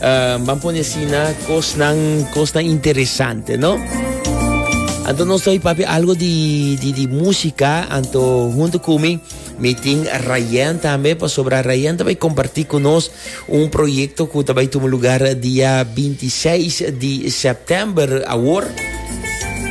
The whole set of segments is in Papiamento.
Ban pone asina kosnan kosnan interesante no. Anto nos ta papi algo di di di música anto junto con mi mi tin Rayen también pasobra Rayen ta bay compartir con nos un proyecto que ta bay toma lugar dia 26 di september awor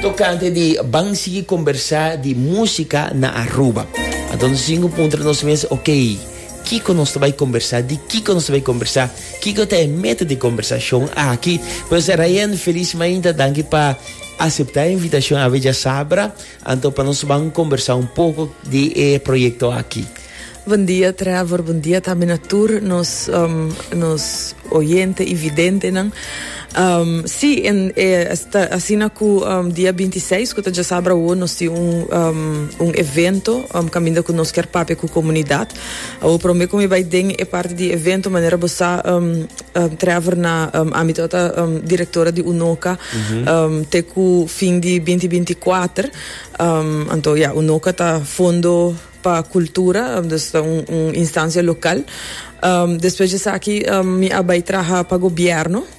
tocante di ban sigui conversa di música na Aruba. Anto nos singo puntra nos mes ok Kiko nos ta bay conversa di Kiko nos ta bay conversa Kiko ta e meta di e kombersashon aki? Pues Rayen felis mainta danki pa aseptá e invitashon Ave dja sabra, anto pa nos ban kombersá un poko di e proyekto aki. Bon dia Trevor, bon dia tambe na tur nos nos oyente i videntenan. Sí, en e ta asina ku dia binti i seis ku ta dja sabra awo nos tin un un evento kaminda ku nos kier papia ku komunidat. Awor promé ku mi bai den e parti di evento manera bo sa Trevor na ámbito a ta direktora di UNOCA te ku fin di binti binti kuater anto ya UNOCA ta fondo pa kultura dus ta un un instancia lokal despues di esaki mi a bai traha pa gobièrnu.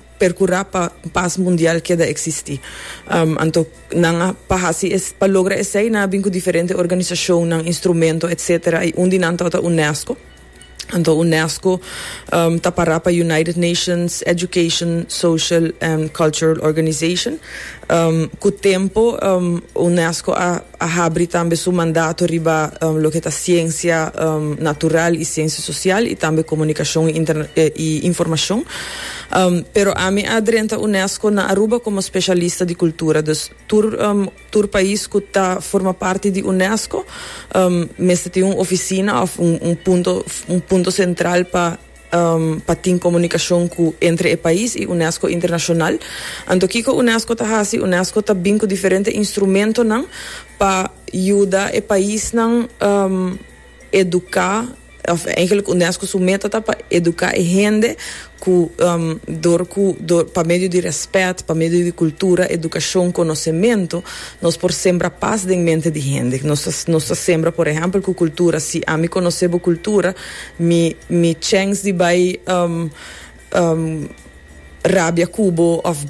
percura pa paz mundial keda existi. Anto nan a pa haci es pa logra esey nan a bin cu diferente organisacionnan, instrumento etc. Y un di nan ta ota UNESCO. Anto UNESCO ta para pa United Nations Education, Social and Cultural Organization. Cu tempo UNESCO a. a habri tambe su mandato riba loke ta siensia natural y siensia social y tambe comunicacion y informacion. Pero ami a drenta UNESCO na Aruba como specialista di cultura, dus tur tur pais cu ta forma parti di UNESCO mester tin un oficina of un punto un punto central pa pa tin komunikashon ku entre e pais i Unesco internashonal. Anto kiko Unesco ta hasi? Unesco ta bin ku diferente instrumentonan pa yuda e paisnan eduká, òf eigentlik Unesco su meta ta pa eduká e hende ku dor ku dor pa medio di rèspèt, pa medio di kultura, edukashon, konosementu nos por sembra pas den mente di hende. Nos ta nos ta sembra por ehèmpel ku kultura si ami konosé bo kultura, Mi mi chens di bai rabia ku bo of.